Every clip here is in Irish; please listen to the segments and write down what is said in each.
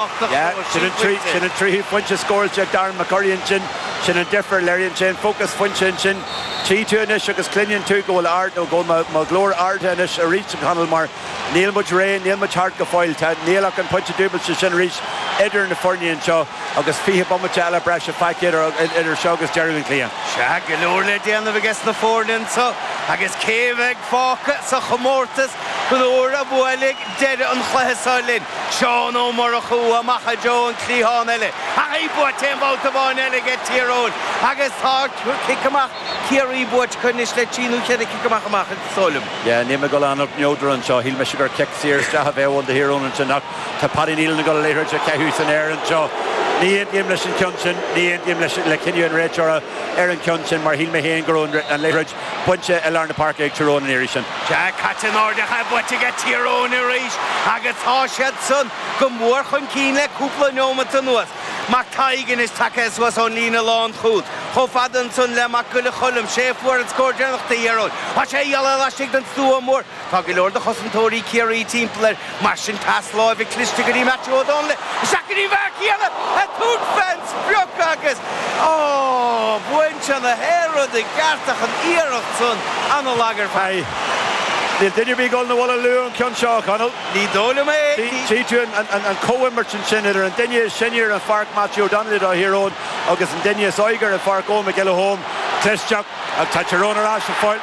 Sin an tríú pointe scóráilte ag Darren McCurry ansin, sin an difear. Léiríonn sé an fócas foinse ansin. Tchí tú anois agus cluineann tú go bhfuil ard, nó go bhfuil mo ghlór ardaithe anois arís a Chonaill mar níl muid réidh, níl muid thart go fóill. Tá, níl ach an pointe dúbailte sin arís idir na foirne anseo agus fiche bomaite eile breise fágtha idir seo agus deireadh an chluiche. Sea, go leor le déanamh aige sna foirne anseo agus cé a bheidh fágtha sa chomórtas nuair a bhuailfidh deireadh an chluiche seo linn. Seán Ó Murchú amach i dtreo an cliathán eile ach í buaite aon bhabhta amháin eile aige Tír Eoghain agus tá cic amach Ciarraí buaite acu anois le trí nó cheithre chic amach amach is dóigh liom. Yeah, níl mé dul ann ach neodrach anseo. Shíl mise gur cic saor isteach a bheadh ann do Thír Eoghain ansin ach tá Paddy Neilan ag dul an liathróid a chaitheamh san aer anseo. Ní aontaím leis an ceann sin, ní aontaím leis le cinneadh an réiteora ar an ceann sin mar shíl mé féin go raibh an liathróid bainte i lár na páirce ag Tír Eoghain an iarraidh sin. Sea, caite in airde ach í buaite aige Tír Eoghain arís agus tá siad san go mór chun cinn le cúpla neomant anuas. Mac Taidhg anois tagtha suas ón líne lán chúl. Chomh fada ansan le Mac Giolla Choilm, sé a fuair an scór deireanach do Thír Eoghain. Tá sé geall le laistigh den stua mór. Tá go leor de chosantóirí Ciarraí timpeall air, mar sin pas láimhe cliste go dtí Matthew Ó Donnaile, isteach go dtí an fear céanna a thug fé an sprioc agus bhain sé na haeráid i gceart ach an iarracht san an-lag ar fad. Níl duine ar bith ag dul 'na bhaile luath ón ceann seo, a Chonaill. Ní dóigh liom é. Tchí tú an comhimirt ansin idir an duine is sine ar an pháirc, Matthew Ó Donnaile do Thír Eoghain, agus an duine is óige ar an pháirc, Eoghan McElholm. Cliste. Tá Tír Eoghain ar ais, a Phóil.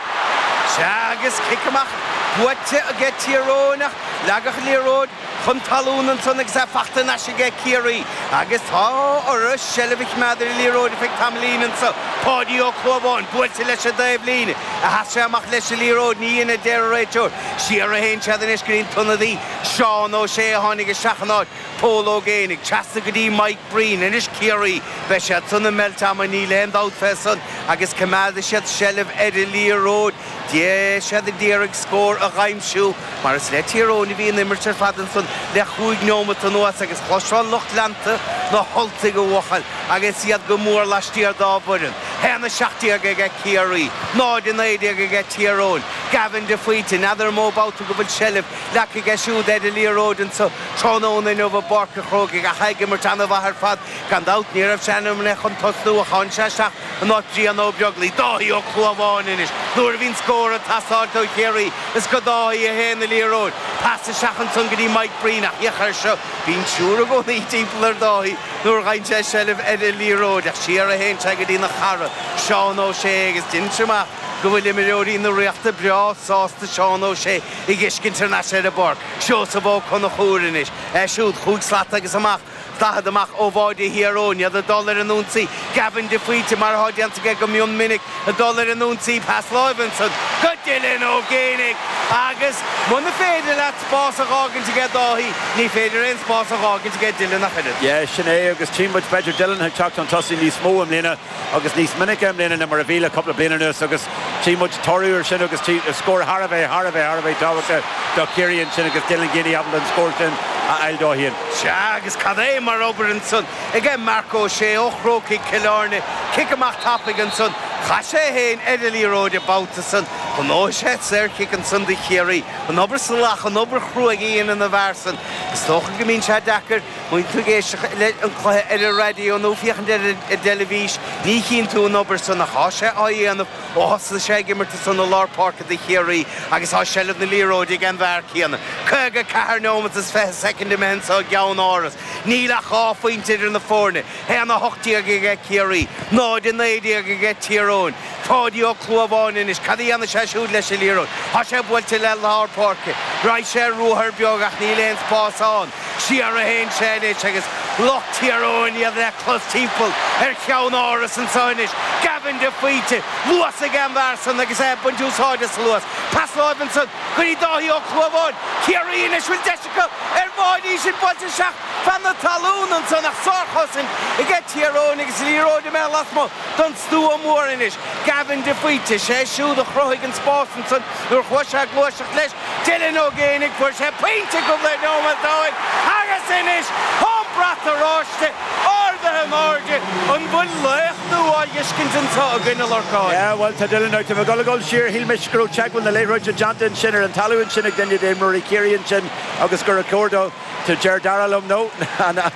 Sea, agus cic amach buaite age Tír Eoghain ach leagadh an liathróid chun talún ansan agus í fachta anois age Ciarraí agus tá orthu seilbh a choimeád ar an liathróid ar feadh tamaillín anso. Páidí Ó Clúmháin buailte leis an dtaobhlíne, ar sheas sé amach leis an liathróid, níor dhein a deir an réiteoir. Siar a théann siad anois go dtí an t-ionadaí Seán Ó Sé a tháinig isteach in áit. Pól Ó Géibheannaigh trasna go dtí Mike Breen, anois Ciarraí. Beidh siad san ag meilt ama níl aon dabht fé san, agus coimeádfaidh siad seilbh ar an liathróid, beidh siad ag iarraidh scór a dh'aimsiú, mar is le Tír Eoghain a bhí an imirt ar fad ansan le chúig neomant anuas agus chloisfeá lucht leanta na hUltaigh a bhuachail agus iad go mór laistiar dá bhfoireann. 1, 17 aige Ciarraí, 0, 19 aige Tír Eoghain. Gavin de Faoite, n'fheadar an mó babhta go bhfuil seilbh glactha aige siúd ar an liathróid ansan, Tráthnóna inniu i bPáirc an Chrócaigh ach é ag imirt an-mhaith ar fad. Gan dabht ní raibh sé ainmnithe chun tosnú ach tháinig sé isteach in áit Bhrian Ó Beaglaoich. Dáithí Ó Clúmháin anois nuair a bhíonn scór ag teastáil ó Chiarraí. Is go Dáithí a théann an liathróid. Pas isteach ansan go dtí Mike Breen ach féach air seo. Bíonn triúr i gcónaí timpeall ar Dáithí nuair a fhaigheann sé seilbh ar an liathróid ach siar a théann sé go dtí a chara, Seán Ó Sé, agus deinimse amach go bhfuil imreoirí na Ríochta breá sásta Seán Ó Sé. á fheiscint ar ais ar an bpáirc, Seosamh Ó Conchúir anois, é siúd chúig slat agus amach, daichead amach ó bháide Thír Eoghain, iad ag dul ar an ionsaí, Gavin de Faoite, mar atá déanta aige go mion minic, ag dul ar an ionsaí, pas láimhe ansan go Dylan Ó Géibheannaigh agus muna féidir leat spás a dh'fhágaint aige Dáithí, ní féidir aon spás a dh'fhágaint aige Dylan ach oiread. Yeah, sin é agus tchí muid b'fhéidir Dylan ag teacht chun tosaigh níos mó i mbliana. agus níos minice i mbliana ná mar a bhí le cúpla bliain anuas agus tchí muid toradh ar sin agus tchí scór thar a bheith, thar a bheith, thar a bheith tábhachtach do Chiarraí ansin agus Dylan Geaney ábalta an scór sin a fháil dó féin. Sea agus cad é mar obair ansan ag eh Marc Ó Sé ó Chrócaigh Chill Airne, cic amach tapaidh ansan, chaith sé é féin ar an liathróid an babhta san, ghnóthaigh sé saorchic ansan do Chiarraí. An obair salach, an obair chruaidh a dhéanann an fear san. Is dócha go mbíonn sé deacair, Má tá tú ag éisteacht leis an gcluiche ar an raidió nó féachaint ar an dteilifís ní chíonn tú an obair san a thá sé á dhéanamh ó thosaigh sé ag imirt ansan i lár páirce do Chiarraí agus thá seilbh na liathróide ag an bhfear céanna caoga ceathair neomat is fiche soicind imithe anso i gCeannáras. Níl ach dhá phointe idir na foirne, haon a hocht déag aige Ciarraí, náid a naoi déag aige Tír Eoghain. Páidí Ó Clúmháin anois, cad a dhéanfaidh sé siúd leis an liathróid? Thá sé buailte le lár páirce. Raghaidh sé ar ruathar beag ach níl aon spás ann. Siar a théann sé anois agus lucht Tír Eoghain iad le clos timpeall ar Cheannáras anso anois. Gavin de Faoite, luas aige an bhfear san agus é ag baint úsáid as a luas. Pas láimhe ansan go dtí Dáithí Ó Clúmháin. Ciarraí anois bhfuil deis acu ar bháide, í sin buailte isteach fan na talún ansan ach sárchosaint aige Tír Eoghain agus liathróid imithe lasmuigh don stua mór anois. Gavin de Faoite, sé siúd a chruthaigh an spás ansan nuair chuaigh sé ag gluaiseacht leis. Dylan Ó Géibheannaigh, fuair sé pointe cúpla neomat ó shin agus anois tá an brat oráiste ardaithe in airde! An bhfuil laoch nua á fheiscint anseo againn, a Lorcáin? Yeah, bhuel, tá Dylan ach tá mé ag dul a dhul siar. Shíl mise go raibh teagmháil na liathróide déanta ansin ar an talamh ansin ag duine d'imreoirí Chiarraí ansin agus gur ag comhaireamh dó, deir Dara liom, no.